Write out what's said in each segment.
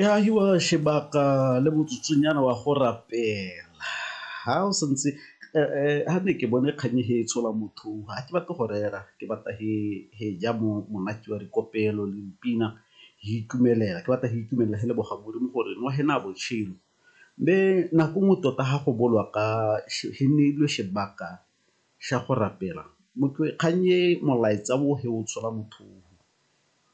e agiwa sebaka le motsotsonyana wa go rapela ha o santse ha ne ke bone kgang e tshola motho ha ke batle go rera ke batla he ja monate wa dikopelo le dipina ke itumelela ke batla ke itumelela le leboga modimo gore nwa he naya botshelo. Mme nako nngwe tota ha go bolwa ka he neilwe sebaka sa go rapela motho kgang e molaetsa o he o tshola motho.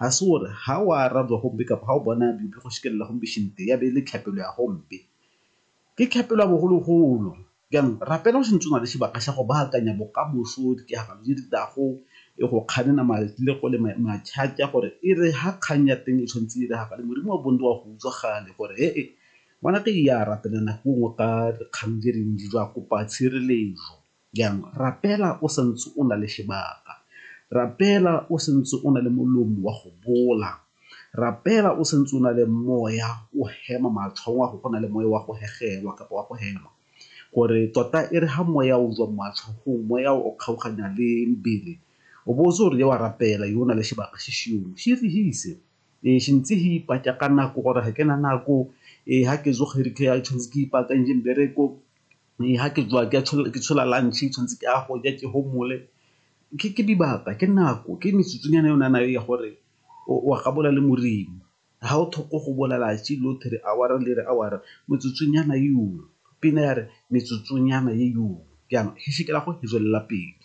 Ga se gore ga o arabe gompe kapa ga o bona biopi go šikelela gompe šente ya be e le tlhapelo ya gompe. Ke tlhapelo ya bogologolo. Jaanong rapela o sentse o na le sebaka sa go baakanya bokamoso, ditiragalo tse di tlago, go kganena matlego le matšhatša gore e re ga kgang ya teng e tshwanetse e diragale, Modimo wa bontle o a go utswa gale gore he-e ngwanaka eya rapela nako e nngwe ka dikgang tse dintsi jwa kopa tshireletso. Jang? Rapela o sa ntse o na le sebaka. Rapela o sa ntse o na le molomo wa go bola. Rapela o sa ntse o na le moya o hema matlhong a go go na le moya wa go hegelwa kapa wa go hema. Gore tota e re ga moya o jwa matlhogong, moya o kgaoganya le mebele, o bo o tse o re wa rapela yo o na le sebaka se seong. Se re se ise. Ee, se ntse se ipatsa ka nako gore ga ke na nako, ee ga ke tsoga e re ke tshwanetse ke ipaakantse mmereko, ga ke tswa ke tshola lunch tshwanetse ke a go ja ke gomole ke dibaka ke nako ke metsotsonyana e o na nang ya gore o a gabola le moreng ga o tlhoko go bolela tse lotlhe re hour-a le re hour-a metsotsonyana eo pina ya re metsotsonyana eo jaanong go tswelela pele.